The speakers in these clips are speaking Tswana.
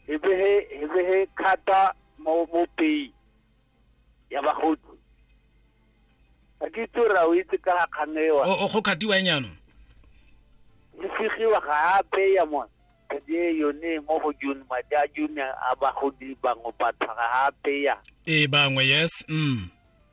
hebehe hebehe khata mo mo pei ya bagodi a ke itse ra o itse ka kganewa o go khatiwa e nyano e segiwa gape ya mona kadi e yone mo go june madi a june a bagodi bangwe batho gape ya ee bangwe yes mm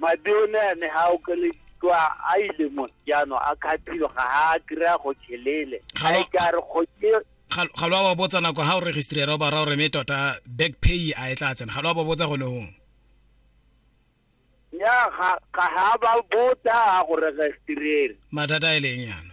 mabione a ne ga okelediwa a ile mo jaanong a kgaphilo ga a kry-a go chelele ga e ka re kgoke ga lo a ba botsa nako ga o registrera o ba ra o reme tota back pay a e tla tsena ga lo a ba botsa gone gong ya ga ga ba botsa go registrera mathata a e leng yana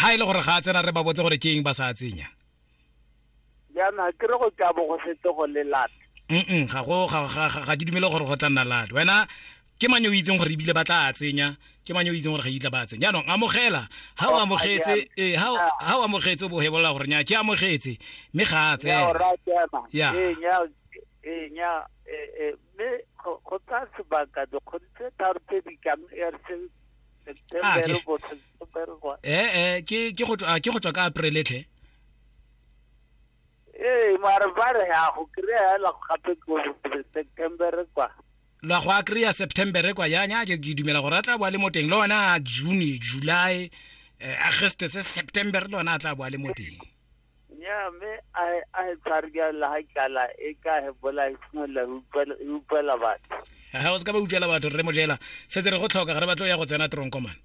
ha e le gore ga a tsena re ba botse gore ke eng ba sa tsenya jaana ke re go tla bo go setse go le lat mm ga go ga ke dumele gore go tla nna lat wena ke mang yo o itseng gore ebile ba tla a tsenya ke mang yo o itseng gore ga itla ba tsenya jaanong amogela ga o amogetse ee ga o amogetse o bo hebolola gore nya ke amogetse mme ga a tsena ya mme go tsa sebaka dikgodi tse tharo tse di kang e re september eh eh ke ke go ke go tswa ka april tlhe ee mara ba re ya go kry-a fela gape ko september kwa la go a kry-a september kwa yanya ke dumela gore a tla boa le mo teng le ona june july eh, augustus september le ona a tla boa le mo teng Nnyaa, mme a e- a e tshware ka la ga tlala e ka he bola e simolola go utlwela- e utlwela batho ga o se ka ba utlwela batho rre mojela setse re go tlhoka ga re batlo ya go tsena tronkomane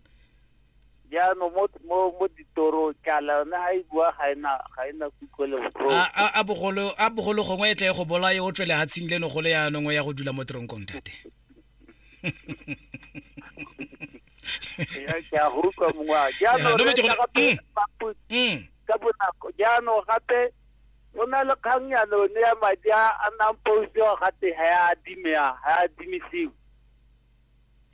jaanong mo mo mo ditorong tlala yone ga e bua ga ena ga ena kutlwe le botlhoko a a- a bogolo a bogolo gongwe e tle e go bolaye o tswele hatshing leno gole yaanong o ya go dula mo tronkong tate Ya, ke a go utlwa mongwe wa Ya, jaanong no re metse gone- tla gape mm. mapu- Mm. ka bonako jaanong gape go na le kgang ya lone ya madi a a nang posiwa gate ga ya adimea ga ya adimisiwe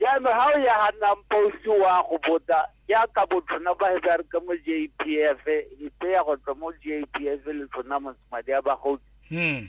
jaanong ga o ya ga nang posi wa go bota jaaka botlhona ba he ba re ka mo j p f e tseya go tswa mo j p f le tlhona madi a bagodi Mm.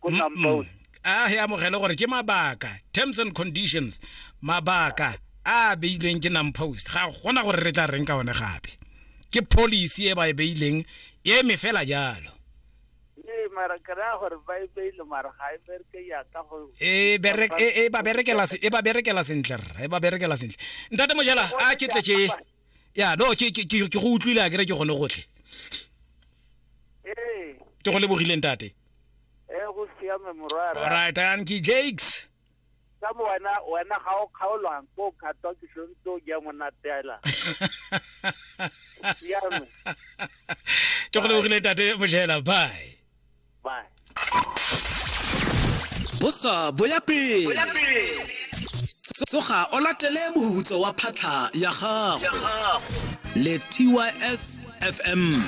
ko tampone a he amogele gore ke mabaka terms and conditions mabaka a beilweng ke nampost ga gona gore re tla reng ka one gape ke policy e ba e beileng e me fela jalo e e, e, e ba berekela sentle rra e ba berekela sentle ntate mojela a ke tle ke ya no ke ke- ke- ke go utlwile a kere ke gone gotlhe ee ke go lebogileng tate ee go siame morwara alright anki jakes ka mo wena wena ga o kgaolwang ko o kgatwa ke sontse o ja monatela siame ke go lebogileng tate mojela bye Bye. bosa bo ya pele tsoga o latele mohutso wa phatlha ya gago le tys fm